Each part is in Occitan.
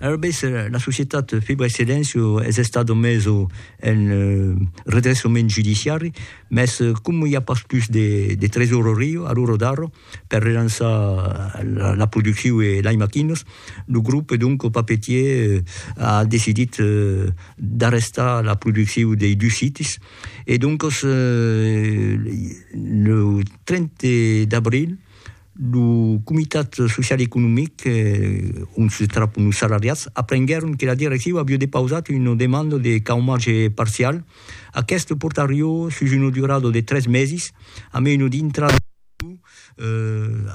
Arabes, la societat Fibra e Silencio es estat au meso en redressament judiciari, mès coma i a pas pus de tresorerio a l'ora d'ara per relançar la produccion e lei maquinas, lo grup donc papetier a decidit d'arrestar la produccion dei dus sites e doncas lo 30 d'abril Lo comitat social e economic, ont se trapon los salariats, aprenguèron que la direcciu aviá depausat una demanda de caumatge parcial. Aqueste portarió sus una durada de tres mesis, a mena d'intrada en vigor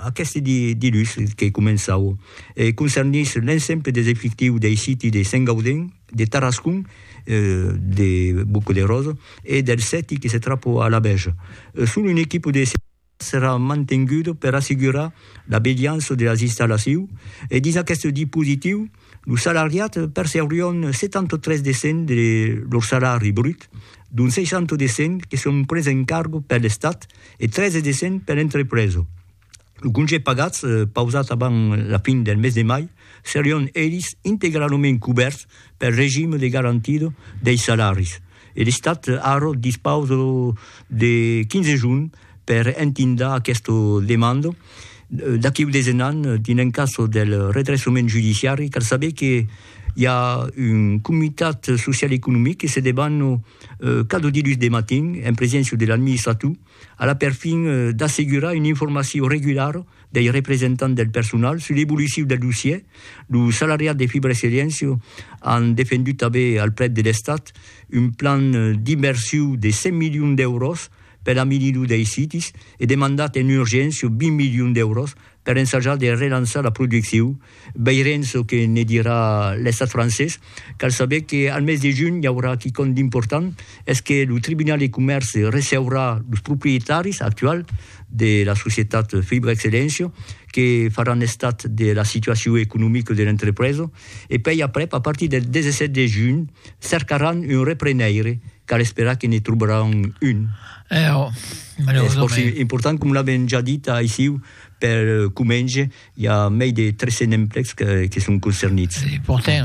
aqueste dilús que començava, e concernís l'ensemble des efectius dei siti de Saint-Gaudens, de Tarascon, de Boca de Rosa e del Seti que se trapa a la Bèja. Son un equipa de servici serà mantengut per assegurar la beliança de las installacius e dins aqueste dispositiu los salariats percebrion 73 de cent de lor salari brut, dont 60 de cent que son pres en cargo per l'Estat e 13 de cent per l'entrepresa. Los congés pagats pausats avant la fin del mes de mai serion elis integralament cubèrts pel regime de garantida dei salaris. E l'Estat arro dispausa de 15 jorn per entindar aquesta demanda. D'aquí udes un an, dins un cas del redressament judiciari, cal saber que i a un comitat social e economic que se debana cada dilhus de matin, en preséncia de l'administrator, a la perfin d'assegurar una informacion regulara dei representants del personal sus l'evoluciu del dossier, lo salariat de Fibra e Seliencio an defendut tanben al plet de l'Estat un plan d'inversiu de 100 milions d'èuros per l'amenir lo dei sites e demandat en urgéncia 20 milions d'èuros per ensajar de relançar la producciu Veirem çò que ne dirà l'Estat francés. Cal saber que al mes de junh i aurà quicòm d'important, es que lo Tribunal de Comèrce receurà los proprietaris actuals de la societat Fibra Excellencio que faràn estat de la situacion economica de l'entrepresa e pei aprèp, a partir del 17 de junh, cercaràn un repreneire. Cal esperar que ne trobaràn un. Es fòrça important, com l'avèm ja dit aicí per comenge, I a mei de 300 emplecs que son concernits. Portèr.